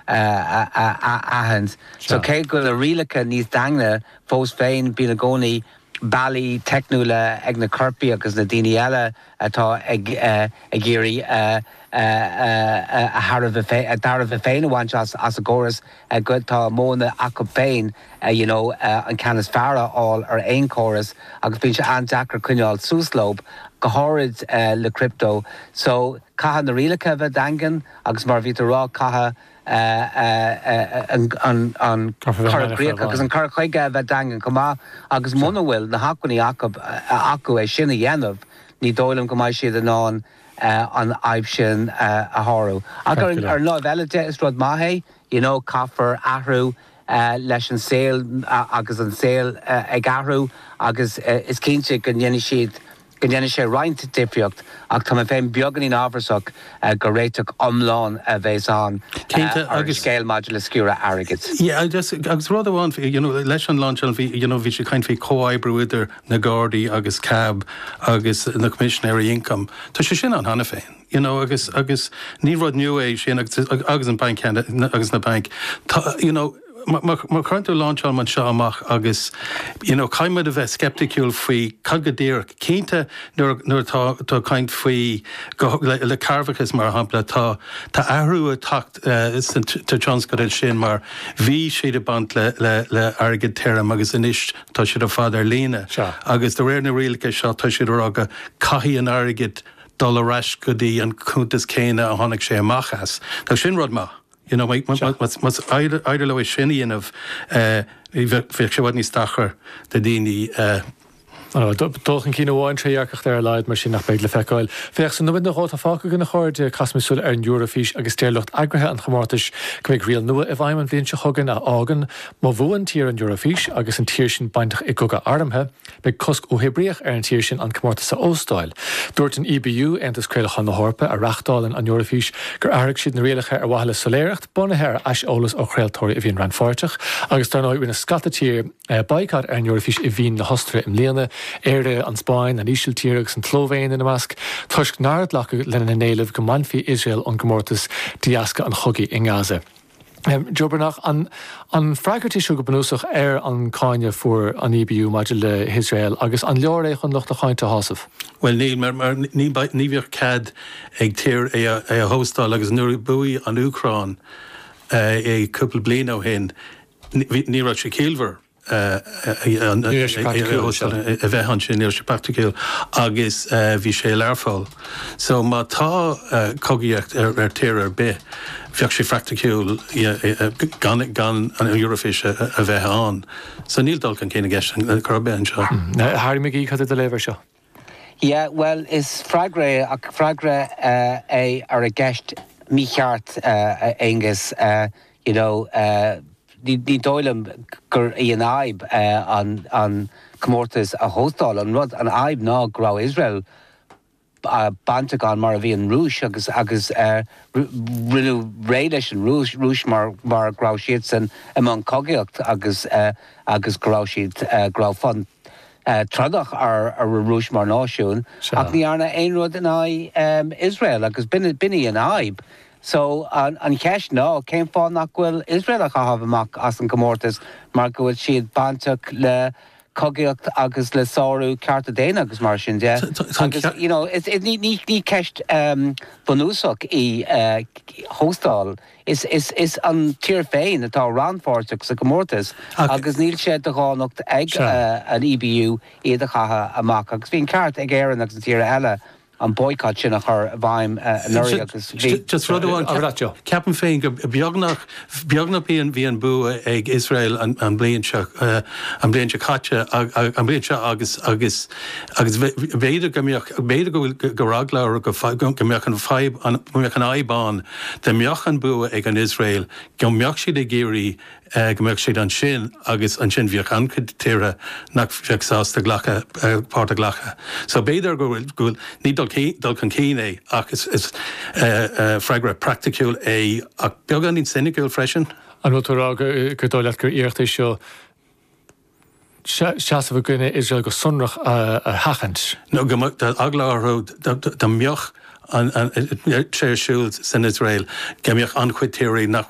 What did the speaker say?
a aithint. So cé go bhfuil na rialacha níos daingne fós féin bíonn i gcónaí bealaí teicniúla ag na coirpigh agus na daoine eile atá ag iarraidh a dtairbhe féin a bhaint as an gcóras go tá modhanna acub féin you know an ceann is fearr a fháil ar aon chóras agus bíonn sé an-deacair coinneáil suas leob go háirid le crypto. So caithfidh na rialacha a bheith daingean. agus mar a bhí tú ag rá caithfidh an cur i gcríoch agus an cur chuige a bheith daingean chomh maith agus muna bhfuil na hacmhainní acu é sin a dhéanamh ní dóigh liom go mbeidh siad in ann an fhadhb sin a shárú. Ach ar an láimh eile de is rud maith é you know caithfear athrú leis an saol agus an saol ag athrú agus is cinnte go ndéanfaidh siad go ndéanfaidh sé roinnt difríocht ach tá mé féin beagáinín amhrasach gur réiteach iomlán a bhéas ann ar an scéal maidir le sciúradh airgid. Yeah agus rud amháin you know leis an launch bhí you know bhí sé ag caint faoi comhoibriú idir na Gardaí agus cab agus na Coimisinéirí Ioncaim. Tá sé sin ann cheana féin you know agus agus ní rud new é sin agus agus an banc ceannais agus na bainc tá you know Má chuireann tú launch ar bun anseo amach agus you know caithfidh muid a bheith scepticiúil faoi cad go díreach. Cinnte nuair nuair atá tú ag caint faoi le cearrbhachas mar shampla tá tá athrú ag teacht san tionscadal sin mar bhí siad ag baint le le le airgead tirim agus anois tá siad ar fad ar líne agus de réir na rialacha seo tá siad ag rá go caithfidh an t-airgead dul ar ais go dtí an cuntas céanna a tháinig sé amach as. Tá sin rud maith. You know, má, má, más féidir leo sin a dhéanamh, eh, bheadh sé i bhfad níos deacra do dhaoine, eh, I know, do- dul chun cinn amháin, trédhearcacht ar a laghad, mar sin, ach beidh le feiceáil. Féach, sa nóiméad nó dhó atá fágtha againn a chairde, caithimis súil ar an Eoraifís agus deir lucht eagraithe an chomórtais go mbeidh riail nua i bhfeidhm an bhliain seo chugainn a fhágann, má bhuann tír an Eoraifís agus an tír sin bainteach i gcogadh armtha, Beidh cosc uathoibríoch ar an tír sin an comórtas a óstáil. Dúirt an EBU, Aontas Craolacháin na hEorpa, a reáchtálann an Eoraifís, gur athraigh siad na rialacha ar mhaithe le soiléireacht, bunaithe ar aiseolas ó chraoltóirí a bhíonn rannpháirteach, agus dar ndóigh rinne scata tíortha baghcat ar an Eoraifís i Vín na hOstaire i mbliana, Éire, an Spáinn, an Ísiltír agus an tSlóivéin ina measc, toisc nár glacadh lena n-éileamh go mbainfí Iosrael ón gcomórtas de dheasca an chogaidh i nGaza. Joburnaich. An freagairt í seo go bunúsach ar an gcáineadh a fuair an EBU maidir le hIosrael agus an leor é chun lucht a cáinte a shásamh? Bhuel, níl, mar ní bheadh cead ag tír é a hóstáil agus nuair a bhuaigh an Úcráin é cúpla bliain ó shin ní raibh sé ciallmhar. a bheith ansin, níl sé praiticiúil, agus bhí sé i Learpholl. So má tá cogaíocht ar tír ar bith, bheadh sé praiticiúil gan an Eurofís a bheith ann. So níl dul chun cinn i gceist ar chor ar bith anseo. Harry McGee, cad é do léamh air seo? Yeah, bhuel, is freagra é, ach is freagra é ar an gceist mícheart, a Aonghus. You know, ní dóigh liom gur í an fhadhb an comórtas a óstáil. An rud, an fhadhb ná go raibh Iosrael bainteach ann mar a bhí an Rúis agus rinneadh réidh leis an Rúis mar go raibh siadsan i mbun cogaíochta agus go raibh siad, go raibh fonn, trodach ar an Rúis mar náisiún ach ní dearnadh aon rud in aghaidh Iosrael agus b'in í an fhadhb. So an cheist ná cén fáth nach bhfuil Iosrael á chaitheamh amach as an gcomórtas mar go bhfuil siad bainteach le cogaíocht agus le sárú cearta daonna agus mar sin de agus you know ní ceist bhunúsach í hóstáil Is an tír féin atá rannpháirteach sa gcomórtas agus níl sé de dhánacht ag an EBU iad a chaitheamh amach. Agus bhí an ceart ag Éirinn agus na tíortha eile an boycott sin a chur i bhfeidhm anuraidh agus bhí. Just rud amháin a rá. Ceapaim féin go beagnach, beagnach bhí an bua ag Iosrael an bhliain seo caite, an bhliain seo agus b'fhéidir go mbeadh, b'fhéidir go bhfuil, go raibh eagla orthu go mbeadh an fhadhb, go mbeadh an fhadhb ann, Dá mbeadh an bua ag an Iosrael go mbeadh siad ag iarraidh go mbeadh siad ansin agus ansin bheadh an-chuid tíortha nach bheadh sásta glacadh páirt a ghlacadh. So b'fhéidir go bhfuil, ní dul, dul chun cinn é ach is freagra praiticiúil é ach beagáinín soiniciúil freisin. An bhfuil tú ag rá gur dóigh leat gur iarracht é seo, seasamh i gcoinne Iosrael go sonrach a sheachaint. nó go mbeadh eagla orthu dá mbeadh sé ar siúl san Iosrael go mbeadh an-chuid tíortha nach.